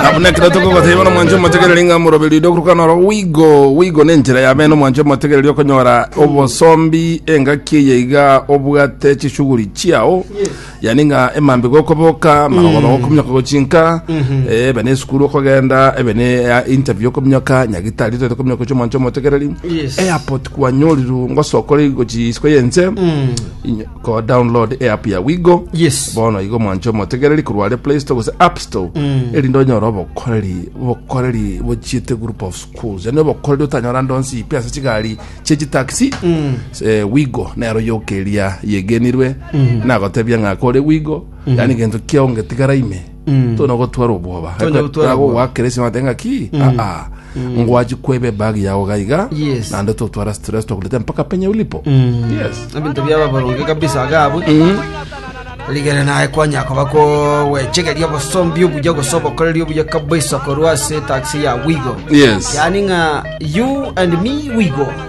na buna ekero tokogoteba nomwanche omotegereri ng'a moroberi oria okuruka noro wigo wigo nenchera yabe nomwanche omotegereri okonyora obosombi engaki eye iga obwate chishughuli chiao yani ng'a emambe gokoboka magogoba gokominyoka gochinka ebe ne esukuru okogenda ebe ne eh, interview okominyoka nyagitari toete kominyoka gochia omwanche omotegereri Yes. airport kwanyoriru ngosokore gochia isiko yense Inyo- Go download eapp ya Wigo. Yes. Bono igo mwanche omotegereri korwa are Play Store gose App Store. Erinde onyore obokoreri, obokoreri bochiete group of schools. Yani obokoreri otanyora ndonsi ipi ase chigari chie chitaxi. Eh, Wigo nero yokeria yegenirwe. Nagotebia ng'a kore Wigo. Yani gento kiaonge tigara ime. tona gotwara obwoba Tonya gotwara obwoba. gwakeresi mate ngaki aa ngwachi kwebe bag yao gaiga Yes. nande totwara stress tokuleta mpaka penye ulipo yes ebinto biaba boronge kabisa agabwe rigere naye kwanya koba kowechegeria obosombi obuya gosobokoreria obuya kabisa korwa ase taxi ya wigo yes yani ng'a you and me wigo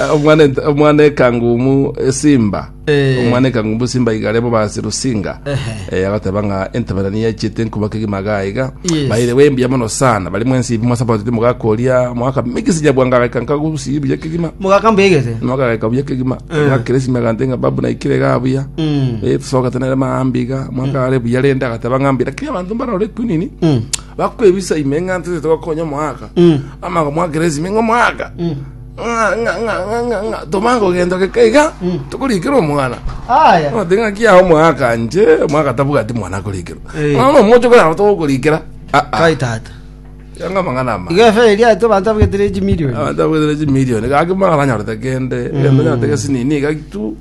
Eh, omwana ent- omwana ekangumu esimba Eh. omwana ekangumu esimba igare bo basi rusinga Ehe. Eh, agateba ng'a entemerani yachete nkubaka egima gaiga Yes. baire we mbuya mono sana bari mwensi ibi mwasapotete mogakoria mwaka migisi nyabwanga agaika nkagusi buya kegima mogaka mbegete mwaka agaika buya kegima Eh. ngakire esime agante ng'a babu naikire ga buya Mm. Eh, tusoka tenere maambiga mwaka are buya rende agateba ng'a mbira kiri abanto mbarore kwinini Mm. Bakwebisa ime ng'a ntesete gokonya omoaka. Ama akamwakeresa ime ng'a omoaka. Ng'a- ng'a- ng'a- ng'a- ng'a- ng'a, tomanye kogenda ogeka iga tokorikera omwana Aya. Ati ng'a kia omwaka nje omwaka tabwati mwana akorikera Eh. mwana omoche korara togokorikera Kai tata. yanga mang'ana ama Iga efe eria ete bantu abwetire echi million. abanto abwetire chimilioni gaki mwana nanyorete kende gento nyatege sinini gaki tu